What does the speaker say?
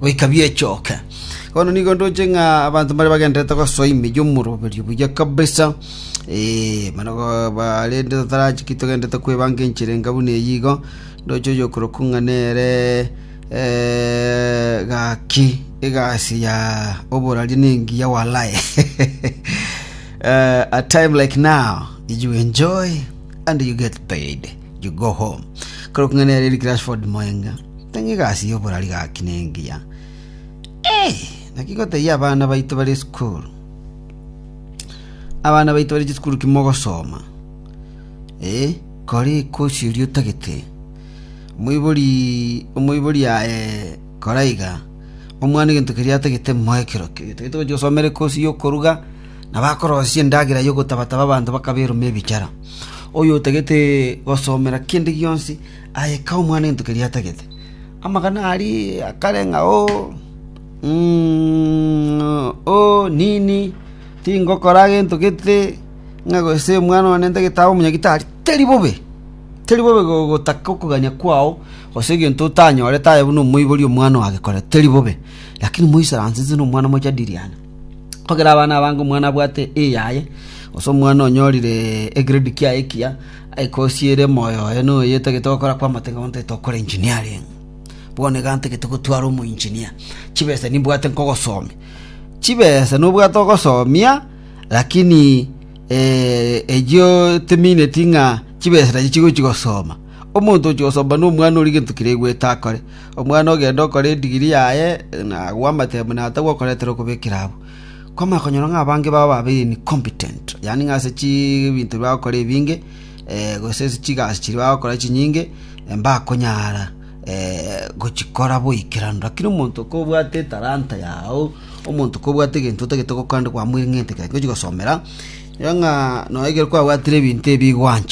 goika biechoke. Bono nigo ndoche ng'a abanto mbare bagendererete gosoa ime y'omoroberio buya kabisa, eh, mana go- barende totarachi ki togendererete kwebanga enchera enga buna eyio igo, ndoche oyokorokwa ng'a nere eh, gaki egasi ya oborari nengiya walai. Eh, a time like now, you enjoy and you get paid. Rigoho. Korwa kung'ana ya Eric Rashford moenga. Tang'e egasi y'oborari gaki nengiya. Eh, naki goteyia abana baito bari esukuru. Abana baito bari chisukuru kimogosoma. Eh, kore ekosi ori otagete. Omoibori omoibori aye koraiga. Omwana egento keria atagete moekero. Tagete gochi gosomera ekosi y'okoruga. na bakorosia endagera y'ogotaba‐taba abanto bakaberoma ebichara. Oyotagete gosomera kende gionsi aye k'omwanento keria atagete. Amagana aria akare ng'a o, o, nini, tingokora gento gete, ng'a gose omwana one ntagete abe omonyagi tari. Teri bobe, teri bobe gotaka okogania kwao gose egento otanyorete aye buna omoibori omwana oagekorete, teri bobe. Lakini moisaranse inse nomwana mochadiriane. Kogera abana abange omwana abwate eyaye, gose omwana onyorire egrade kiaye ekiya, aigosiere moyo oye na oye tagete gokora kw'amate bono tagete gokora engineering. Bono iga ntagete gotwara omo engineer. Chibesa nimbwate nkogosomia. Chibesa nobwate ogosomia lakini echio timineti ng'a chibesa nachi chigochi gosoma. Omonto ochi gosoma nomwana ori gento keria aigwete akore. Omwana ogende okore edigiri yaye, na agwo amatebe buna atagwo okoreterwa okobekera abwo. Kwamanya konyora ng'a abange babo babeire incompetent, yaani ng'a ase chibinto bi bagokora ebinge, gose ase chigasi chiria bagokora chinyinge, mbakonyara gochikora boikeranu. Rakini omonto kobwate etalanta yago, omonto kobwate egento otagete gokora naende kwamweng'ente kere gochi gosomera, erio ng'a nonya ekero kwabwatire ebinto ebi gwancha.